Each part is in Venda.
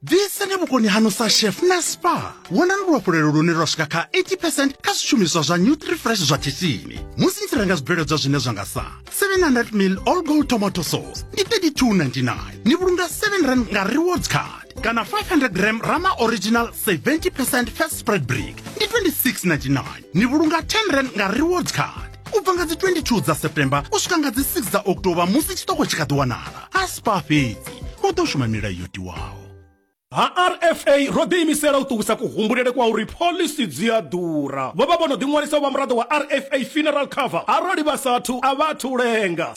bvisani vhukoni hanu sa chef na spa wonani luhafhulelo lune lwa swika kha 80 percent kha zwishumiswa zwa nutrifresh zwa khishini musi ni tshi renga zwibveledzwa zwine zwa nga sa 700 mil all gold tomato sauce ndi 3299 ni vhulunga 7 rand nga rewards card kana 500 gram rama original 70 percent fat spread brick ndi 2699 ni vhulunga 10 rand nga rewards card u bva nga dzi 22 dza september u swika nga dzi 6 dza oktoba musi tshiṱoko tshi kha ḓi wanala a spa fhedzi hu ḓo shuma milayo yo tiwaho ha rfa ro ḓiimisela u ṱuwisa kuhumbulele kwa uri pholisi dzi a ḓura vho vha vho no ḓiṅwalisa u vha muraḓo wa rfa funeral cover arali vha sathu a vha athu lenga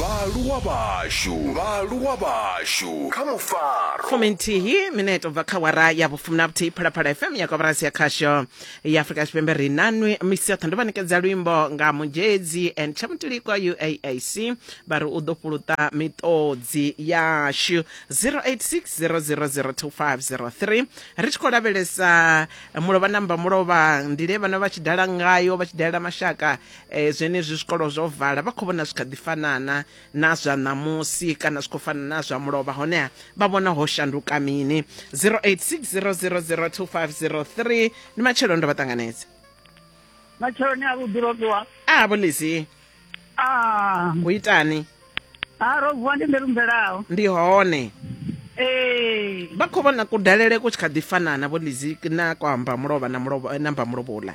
vhaaluwa vhashu vhaaluwa vhashu kha mufaro fumi nthihi mineto bva kha wara ya vhufumi na vhuthihi phalaphala fm ya kwabarasi ya khasho ya afurika tshipembe ri nanwi misi yoṱhe ndo vha ṋekedza luimbo nga muzhedzi and tshamutuliko uaac vha ri u ḓo fhuluta miṱodzi yashu 0860002503 ri tshi khou lavhelesa mulovha namba mulovha ndile vhana vha tshi dala ngayo vha tshi dalela mashaka e, zwenezwi zwikolo zwo vala vha khou vhona zwi kha ḓi fanana na zwa ṋamusi kana zwi khou fana na zwa mulovha honeha vha vhona ho shanduka mini 0860002503 ndi matshelo ndo vha ṱanganedza matsheloni a vhuḓi robiwa a vholizi a u itani a robiwa ndi ndelumbelaho ndi hone ee vha khou vhona kudalele ku tshi kha ḓi fanana vholizi na kwa mbamulovha na mulovha na mbamulovhola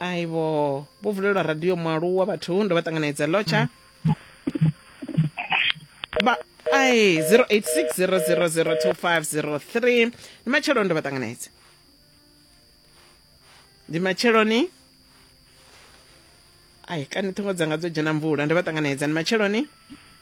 aibo vho vulelwa radio mualuwa vhathu ndo vha ṱanganedza lotsha ba ai 0860002503 ndi matshelo ndo vha ṱanganedza ndi matsheloni ai kani ṱhingo dzanga dzo dzhena mvula ndo vha ṱanganedza ndi matsheloni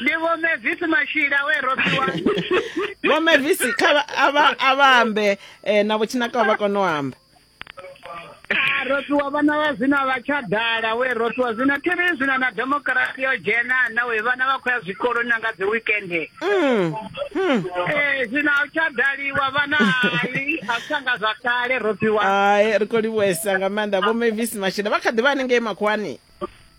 ndi vho mevisi mashila we rofiwa vho mevisi kha a vha ambe eh, na vhotshinakiwa vha kone u amba ah, rofiwa vhana vha zwino vha tsha dala we rofiwa zwino thi ri zwino na demokirasi yo dzhena na we vhana vha khou ya zwikoloni na nga dzi wikende mm, hmm. eh, zwino a u tsha daliwa vhana hai a tsha nga zwa kale rofiwa hai ri khou livhuesa nga maanḓa vho mevisi mashila vha kha ḓi vha hanengei makhuwani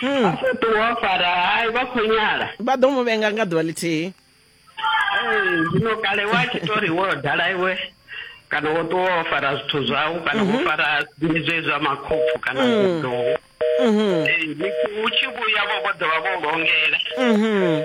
Hmm. a sa ṱuwa fara hai vha khou nyala vha ḓo mu vhenga nga ḓuvha ḽithihi zwino kale wa tshi to ri wo dala iwe kana wo ṱuwa wo fara zwithu zwau kana wo mhm. fara zwiṅwe zwe zwa makhopfu kana hmm. zwiḓou mhm. u tshi vhuya vho vho ḓovha vho longela mhm.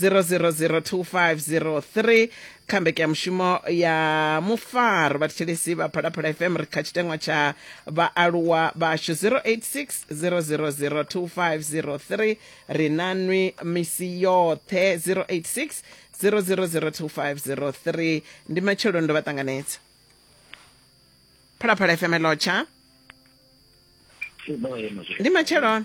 0002503 kha mbekanyamushumo ya mufaro vhathetshelesi vha phalaphala fm ri kha tshitengwa tsha vhaaluwa vhashu 086 ri na nwi misi yoṱhe 086 0002503 ndi matshelo ndo vha ṱanganedza phalaphala fm lotsha ndi matshelo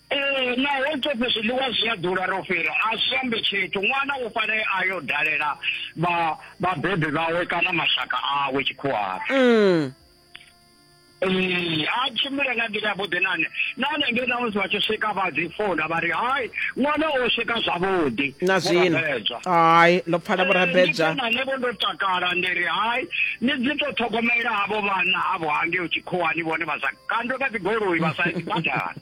Ee, naho tshoṱhe zwiḽiwa zwi a ḓura, ro fhira, a zwi ambi tshithu. Ṅwana u fanela a yo dalela vha vhabebi vhawe kana mashaka awe tshikhuwani. Mm. Ee, a tshimbile nga nḓila yavhuḓi na nṋe. Nahone ngei na musi vha tshi swika vha dzi founa vha ri hai ṅwana o swika zwavhuḓi. Na Vho zwino. Rabedzwa. Hai, ndo pfala vho rabedzwa. Ee, ndi khona nṋe vho ndo takala ndi ri hai ni dzi tou ṱhogomela havho vhana avho hangei tshikhuwani vhone vha sa kandwe nga dzigoloi vha sa badani.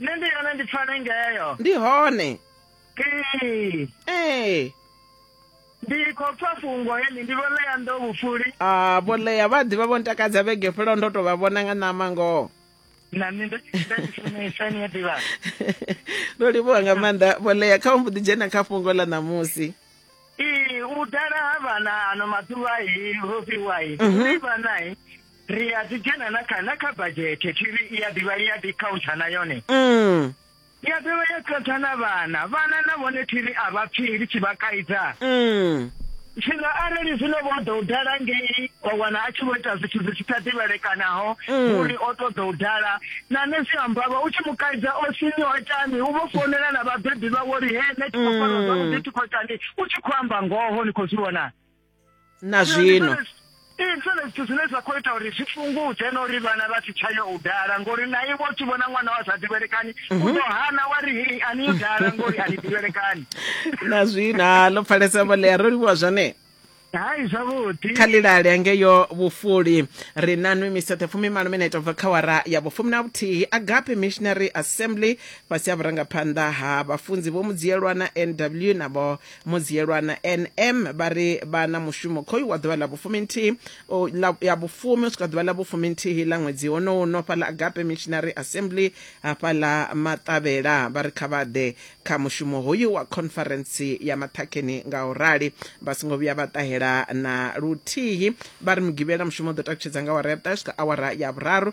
nṋe ndi yone ndi pfale ngeyo ndi hone ee ee ndi khou pfa fhungo heḽi ndi vho ḽeya ndo vhufuli a ah, vho ḽeya vha ḓivha vho ntakadza vhege fhelaho ndo to vha vhona nga ṋama ngoho na nṋe ndo funesa ni a ḓivha ndo livhuwa nga maanḓa vho ḽeya kha mbo ḓi dzhena kha fhungo ḽa ṋamusi ee u dala ha vhana ano maḓuvha i ro fhiwa i vhana i ri a ḓi dzhena na kha na kha badzhethe thiri i ya ḓivha i ya ḓi khauntsha na yone mm. i ya ḓivha ya khauntsha na vhana vhana na vhone thiri a vha pfhi ri tshi vha kaidza mm. zwino arali zwino vho ḓo u dala ngei wa wana a tshi vho ita zwithu zwi tshi sa ḓivhelekanaho mm. uri o ṱoḓa u dala na nṋe zwi ambavha u tshi mu kaidza o sini o itani u vho founela na vhabebi vha wo ri he nṋe thi khou fara mm. zwavhuḓi thi khou itani u tshi khou amba ngoho ni khou zwi vhona na zwino ndi zwone zwithu zwine zwa khou ita uri zwi fhungudze na uri vhana vha si tsha yo u dala ngori na iwe u tshi vhona ṅwana wa sa ḓivhelekani u mhm. ḓo hana wa ri hei a ni yo dala ngori a ni ḓivhelekani na zwino ha ḽo pfalesa vholea ro livhuwa zwone hai zwavhuḓi kha lilale angeyo vhufuli ri na nwi misethe fumi malo minete bva kha wara ya vhufumi na vhuthihi agape missionary assembly fhasi ya vhurangaphanḓa ha vhafunzi vho mudziyelwa na nw na vho Mudziyelwa na NM vha ri vha na mushumo khoyu wa ḓuvha ḽa vhufuminthihi ya vhufumi u swika ḓuvha ḽa vhufuminthihi ḽa ṅwedzi wonowu no fhaḽa Agape Missionary Assembly hafhaḽa Maṱavhela vha ri kha vha ḓe kha mushumo hoyu wa khonferentsi ya maṱhakheni nga u rali vha songo vhuya vha ṱahela na luthihi vha ri mugivhela mushumo u ḓo takutshedza nga awara ya vhuṱahe swika awara ya vhuraru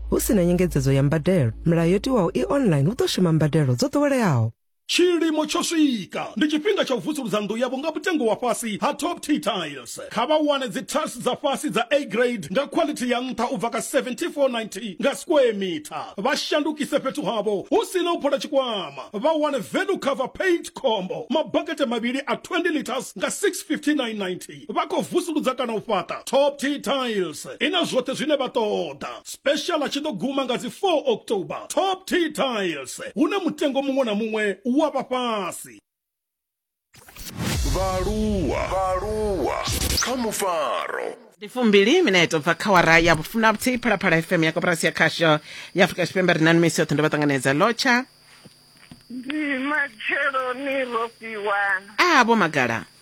hu si na nyengedzedzo ya mbadelo milayo yo tiwaho i online hu ḓo shuma mbadelo dzo ḓoweleaho tshilimo tsho swika ndi tshifhinga tsha u vusuludza nnḓu yavho nga mutengo wa fhasi ha top t tiles kha vha wane dzi tiles dza fhasi dza a grade nga quality ya nṱha u bva ka 7490 nga square meter vha shandukise fhethu havho hu si na u phola tshikwama vha wane value cover paint combo mabakete mavhili a 20 liters nga 65990 vha khou vusuludza kana u fhaṱa Top Tea Tiles i na zwoṱhe zwine vha ṱoḓa. Special a tshi ḓo guma nga dzi 4 October. Top Tea Tiles, hune mutengo muṅwe na muṅwe u wa vha fhasi. Vhaaluwa, vhaaluwa kha mufaro. Ndi fumbili mineto bva kha wara ya vhufumi na vhuthihi phalaphala fm ya koporasi ya khasho ya afurika tshipembe ri nani misi yoṱhe ndo vha ṱanganedza lotsha ndi matsheloni ro fhiwa a vho magala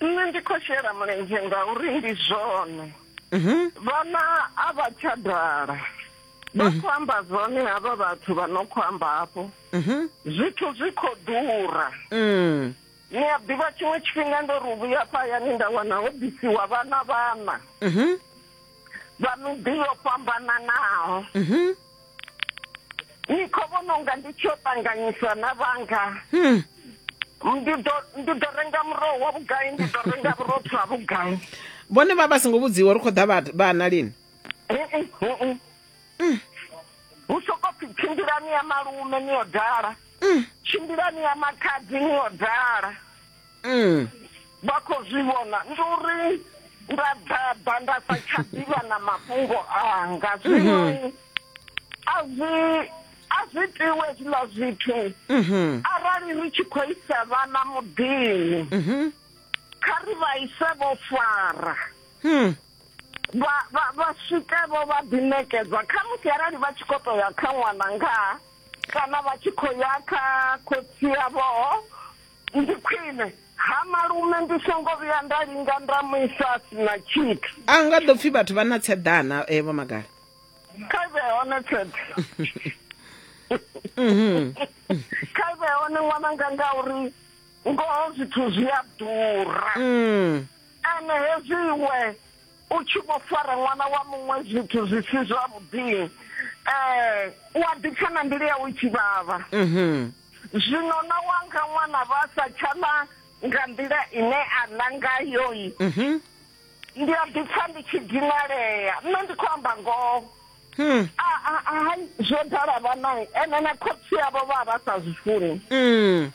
nṋe ndi khou shela mulenzhe ngauri ndi zwone mhm. vhana a vha tsha dala vha mhm. khou amba zwone havha vhathu vha no khou amba hafho mhm. zwithu zwi khou ḓura mm. ni a ḓivha tshiṅwe tshifhinga ndo ri vhuya fhayani nda wana ho bisiwa vhana vhana vha miḓi yo fhambananaho ni khou vhona unga ndi tshi yo ṱanganyiswa na vhanga hmm. ndi ḓo renga muroho wa vhugai ndi ḓo renga vhurotho ha vhugai vhone vha vha songo vhudziwa uri khou ḓa vhana lini hmm. hu soko pfi tshimbilani ya malume ni yo dala hmm. tshimbilani ya makhadzi ni yo dala mm. vha khou zwi vhona ndi uri nda ḓaḓa nda sa tsha ḓivha na mafhungo anga zwino mm-hmm. a zwi a zwi tiwe zwiḽa zwithu mm-hmm. arali ri tshi khou isa vhana muḓini mm-hmm. kha ri vha ise vho fara hmm. vha swike vho vha ḓiṋekedza kha musi arali vha tshi khou to ya kha ṅwana ngaa kana vha tshi khou ya kha khotsi yavhoo ndi khwine ha malume ndi songo vhuya nda linga nda mu isa a si na tshithu a nga ḓo pfhi vhathu vha na tseḓana eh, vho magala kha vhe hone tsheḓe Mhm. kha vhe hone ṅwananga ngauri ngoho zwithu zwi a ḓura Mm. ene hezwi iwe u tshi vho fara ṅwana wa muṅwe zwithu zwi si zwavhuḓi um u a ḓipfa na mbilu yawe i tshi vhavha Mhm. Zwino na wanga ṅwana vha sa tsha ḽa nga nḓila ine a ḽa ngayoi mhm. ndi a ḓi pfa ndi tshi dinalea nṋe ndi khou amba ngoho hmm. hai zwo dala vhanai ene na khotsi yavho vha vha sa zwi funi hmm.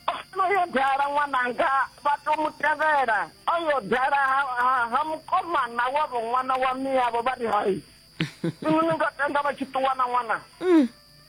ono yo dala ṅwananga vha to mu tevhela o yo dala ha mukomana wavho ṅwana wa miyavho vha ri hai inwi ni nga tenda vha tshi ṱuwa na ṅwana hmm.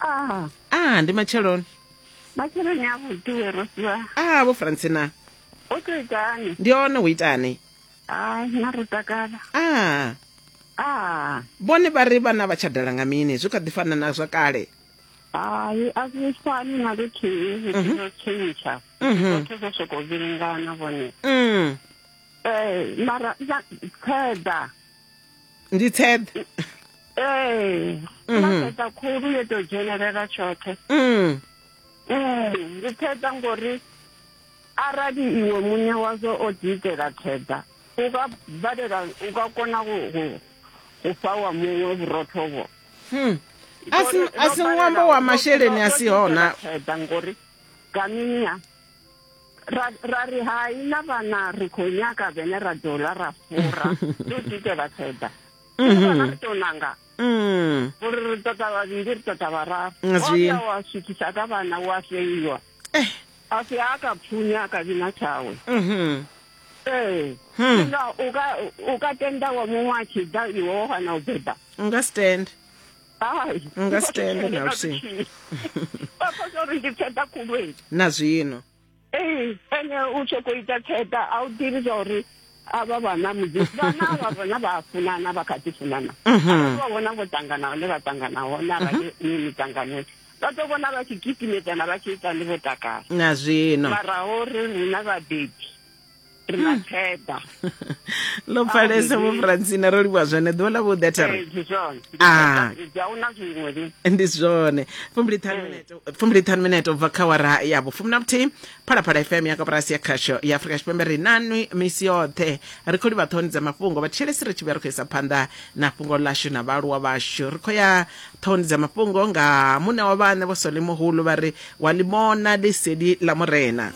Ah. Ah, ndi matsheloni. Matsheloni a vhuḓi we Rosiwa. Ah, vho Francina. Ho to itani? Ndi hone ho itani? Ah, na ro takala. Ah. Ah. Bone ba re bana ba tshadala nga mini? Zwi kha ḓi fana na zwa kale. Hai, a zwi fani na luthihi, zwi mhm. ḓo tshentsha. Mhm. Zwoṱhe zwo sokou vhilingana vhone. Mm. Eh, mara, khaeḓa. ndi tsheḓe ee mm-hmm. maseḓa khulu yo tou dzhenelela tshoṱhe mm. mm, ndi tsheḓa ngori arali iwe muṋe wazwo o ḓiitela tsheḓa u ka balela u ka kona u fha wa muṅwe vhurotho vho hmm. a si ṅwambo wa masheleni a si hona ngori kaminia ra ra ri hai na vhana ri khou nyaga vhene ra ḓo ḽa ra fura ndo dite vha tseda vhana ri tou nanga uri ri ṱoḓa vhavhili ri ṱoḓa vhararu waya wa swikisa ka vhana wa feiwa a si a ka pfunya a ka vhina tshawe ee nga u ka tenda wa muṅwe a tshi ḓa iwe wa hana u beba u nga stand hayi nga si tende na luthihi phaphasa uri ndi tsheda khulweni na zwino ee ene u sokou ita tsheda a u ḓivhi zwa uri avha vhana mudzimu vhana vha vhona vha funana vha kha ḓi funana mhm. vha vhona vho tangana hone vha tangana hone arali mhm. ni mitanganoni vha ḓo vhona vha tshi gidimedzana vha tshi ita ni vho takala na zwino mara uri rina vhabebi rimakheda lo pfalesa vho francina ro livhuwa zwone ḓuvha ḽa vhuḓi ah. ndi zwone fumbiliṱhanu minete ubva kha wara ya vhufumi na vhuthihi phalaphala fm ya kaporasi ya khasho ya afrika tshipembe ri nanwi misi yoṱhe ri khou livha ṱhoni dza mafhungo vhathetshelesi ri tshi vhuya ri khou isa phanḓa na fhungo ḽashu na vhaaluwa vhashu ri khou ya ṱhoni dza mafhungo nga muṋe wa vhaṋe vho sole muhulu vha ri wa limona liseli ḽa murena